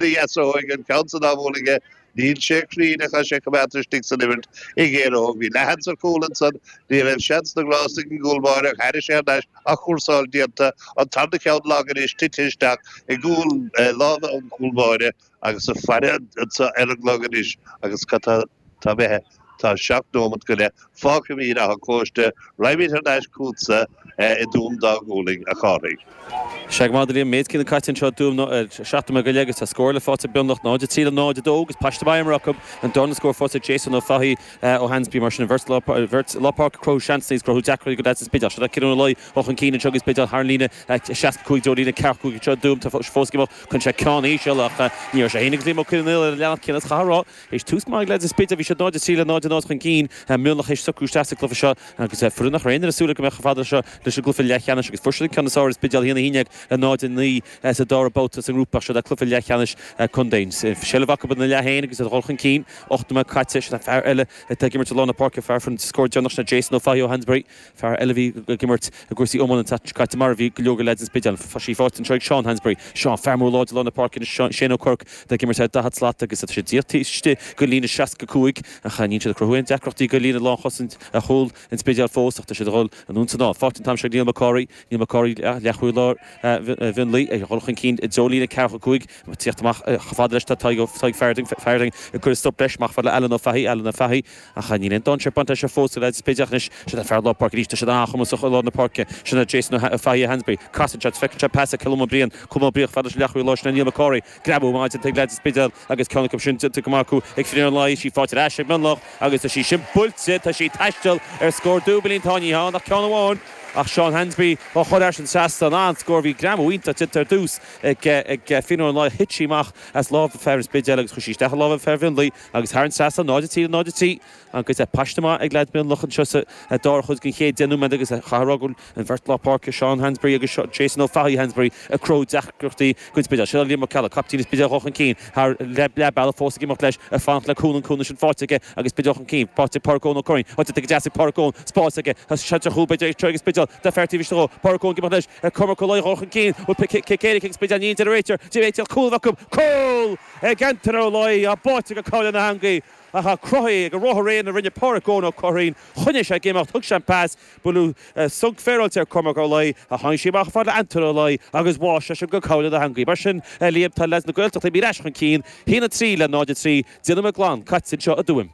D'fhéasóidh an ceann san ámhóin aige. Níl sé cruinn ach tá sé coimeádta istigh san imirt ag Éire Óg. Bhí leathsheans ar chúl ansan. Ní raibh seans na ngrást ag an gcúl báire ach thairis thar n-ais á chúrsáil déanta. An tarna ceann lag anois tite isteach i gcúl láimhe an chúl báire agus ag faire anso ar an gclog anois agus cad tá Tá mé, tá seacht nóimeat go leith fágtha imithe in Áth an Chóiste, raghaimid thar n-ais chughatsa i dTuaim Dá Ghualann, a Chárthaigh. Is ea, go maith Liam, méid céanna caite anseo i dTuaim, nó ar seacht nóiméad go leith agus tá scór eile faighte ag Mionlach, 0, 3 le 0, 2, agus paiste maith imeartha acu, an darna scór faighte ag Jason Ó Fathaigh ó Hansberry, mar sin an bheirt bheirt lár páirce cruthú seansanna is cruthú deacracht go leaids an Spidéil Ciarán Ó Laoi ó chun cinn anseo ag an Spidéal thar an líne 65 i dtreo líne 45 anseo i dTuaim tá fós go chun sé ceann íseal ach ní raibh sé féin agus Liam Ó Conghaile ar an leathanach céanna is chaithfeá a rá Théis tús maith ag leaids an Spidéil, bhí siad 0-3 le 0-0 chun cinn, Mionlach théis socrú isteach sa gcluiche seo agus foireann nach raibh aon duine ag súil go mbeadh chomh fada seo leis an gcluiche leathcheannais agus fuair siad an ceann is fearr ar an Spidéal 1, 1-10 le 0-9 sa dara babhta sa ngrúpa. Seo é cluiche leathcheannais contae. Seilbh acu ina leath féin agus iad dhul chun cinn, 8 nóiméad caite. Fear eile atá ag imirt i lár na páirce, fear a fuair an scór deireanach sin ná Jason Ó Fathaigh ó Hansberry. Fear eile a bhí ag imirt i gcúrsaí iomána an tseachtain seo caite, mar a bhí go leor go leaids an Spidéil, tá sí faighte anseo ag Seán Hansberry. Seán, Fear mór láidir lár na páirce anois é Shane Ó Cuirc, atá ag imirt ar 40 slat agus tá sé díreach istigh go líne 65, ach níl siad ag cruthú aon deacrachtaí go líne lánchosaint ar chúl an Spidéil fós ach tá siad ag dhul anonn 's anall. Faighte an t-am seo ag Neil McCorry, Neil McCorry, leathchúlaí Mhionlaigh, ag dhul chun cinn i dtreo líne 45, ag tíocht amach chomh fada leis tá Tadhg Farding, Farding ag cur stop leis, amach fad le Alan Ó Fathaigh, Alan Ó Fathaigh, Ach níl aon dainséar bainte leis fós, go leaids an Spidéil, ach anois, sin an fear lár páirce arís, tá siad an-chumasach i lár na páirce. Sin é Jason Ó Fathaigh Hansberry. Casann sé agus feiceann sé pas ag Colm Ó Briain, Colm Ó Briain fada leis an leathchúlaí láir sin é Neil McCorry. Greamú maith déanta ag leaids an Spidéil agus ceann acu sin déanta go maith acu ag Finian Ó Laoi. Tá sí faighte ar ais ag Mionlach agus tá sí sin buailte, tá sí ag taisteal ar scór dúbailín. Tá, ní hann, ach ceann amháin ach Seán Hansberry á chur thar an trasnán, an-scór. Bhí greamú iontach déanta ar dtús ag Finian Ó Laoi ach thit sí amach as lámha fear an Spidéil agus chuaigh sí isteach i lámha fear Mhionlaigh. Agus thar an trasnán, 0, 3, 0, 3, an cuid paiste maith ag leaids Mionlach anseo sa dara chuid den chéad deich nóiméad agus chaithfeá a rá go bhfuil an bheirt lár páirce Seán Hansberry agus Jason Ó Fathaigh Hansberry ag cruthú deacrachtaí don Spidéal anseo. Liam Ó Ceallaigh, caiptín an Spidéil chun cinn thar leath bealaigh fós ag imeacht leis ag fanacht le cúnamh an cúnamh sin faighte aige agus Spidéal chun cinn faighte Páraic Eoin Ó Curraoin, tá déanta go deas ag Páraic Eoin, spás aige tá seans ar chúl b'fhéidir ag tíocht ag an Spidéal tá fear taobh istigh dhó, Páraic Eoin ag imeacht leis ag Cormac Ó Laoi ag dhul chun cinn bhfuil cic éirice ag Spidéal níl a deir an réiteoir d'fhéadfadh cúl a bheith acu, cúl! Ag Antoine Ó Laoi a bhí báite go cúl na heangaí ach tá cruthaithe ag an ruathar aonair a rinne Pádraic Eoin Ó Curraoin, choinnigh sé ag imeacht, thug sé an pas, buaileadh sonc féaráilte ar Chormac Ó Laoi, ach tháinig sí amach fad le Antoine Ó Laoi agus bháigh seisean go cúl na heangaí. Mar sin, a Liam, tá leaids na Gaeltachta imithe ar ais chun cinn, 1, 3 le 0, 3, deich nóiméad glan caite anseo i dTuaim.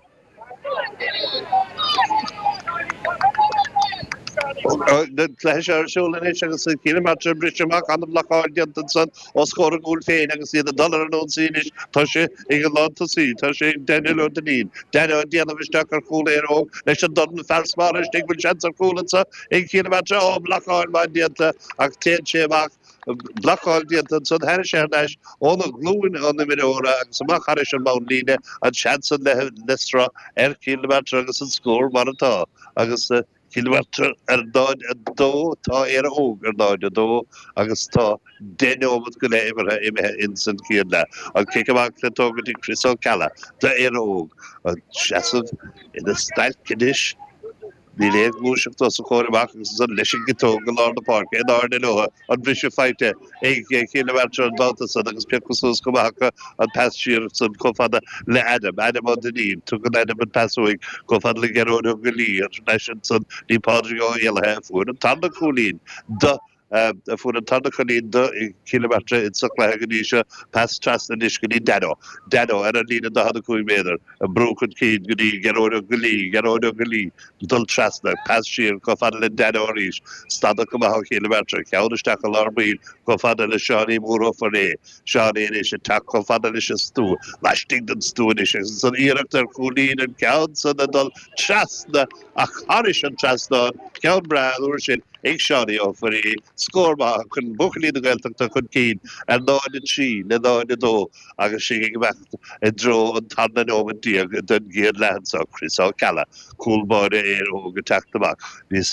An cluiche seo ar siúl anois agus Cill na Martra ag briseadh amach ana-bhlocáil déanta ansan os comhair a gcúil féin agus iad ag dul ar an ionsaí anois tá sé ag an lántosaí, tá sé ag Daniel Ó Duinnín, Danny ag déanamh isteach ar chúl Éire Óg leis an dorn fear is barra istigh, bhfuil seans ar chúl anso ag Cill na Martra, á, blocáil mhaith déanta ach téann sé amach. blocáil déanta ansan thairis thar n-ais óna ghlúin an imreora agus amach thairis an mbunlíne, an seans san imithe le sruth ar Chill na Martra agus an scór mar atá agus Cill na Martra ar 0-2 tá Éire Óg ar 0-2 agus tá deich nóimeat go leith imeartha imithe ins an chéad leath. An cic amach le tógaint ag Chris Ó Ceallaigh d'Éire Óg. Ina sheasamh ina stailc anois. Níl aon ghluaiseacht os a chomhair amach agus ansan leis an gciotóg i lár na páirce in airde leo, an briseadh faighte ag Cill na Martra an babhta san agus pioctha suas chomh maith acu an pas siar ansan chomh fada le Adam, Adam Ó Duinnín. Tugann Adam an pas uaidh chomh fada le Gearóid Ó Goillí agus ansan go dtí Pádraig Ó Héalaithe a fuair an tarna cúilín do Fuair an tarna cúilín do Chill na Martra insa chluiche go dtí seo pas trasna anois go dtí Dano. Dano, ar an líne 45 méadar, ag brú chun cinn go dtí Gearóid Ó Goillí. Gearóid Ó Goillí ag dul trasna, pas siar chomh fada le Dano arís, stadadh chomh maith ó Chill na Martra, ceann isteach i lár baill chomh fada le Seánie Mór Ó Foirréidh. Seánie anois ag teacht chomh fada leis an stua, laistigh den stua anois, agus an iarracht ar chúilín an ceann san ag dul trasna. Ach thairis an trasnán, ceann breá an uair sin ag Seánie Ó Foirréidh, scór maith a chuir buachaillí na Gaeltachta chun cinn ar 0-3 le 0-2 agus sinn ag imeacht i dtreo an tarna nóimeat déag den gcéad leath anseo, Chris Ó Ceallaigh, cúl báire Éire Óg ag teacht amach níos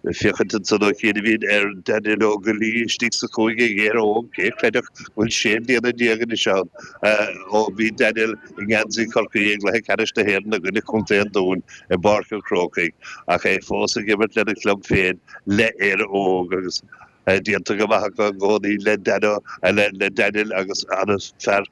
Ag féachaint ansan ó chianaibhín ar Daniel Ó Goillí istigh sa chúinne ag Éire Óg, cé a chreidfeadh go bhfuil sé mbliana déag anois ann ó bhí Daniel i ngeansaí Chorcaí i gcluiche ceannais na hÉireann i gcoinne Chontae an Dúin i bPáirc an Chrócaigh ach é fós ag imirt lena chlub féin le Éire Óg agus déanta go maith acu i gcónaí le Daniel agus an-fhear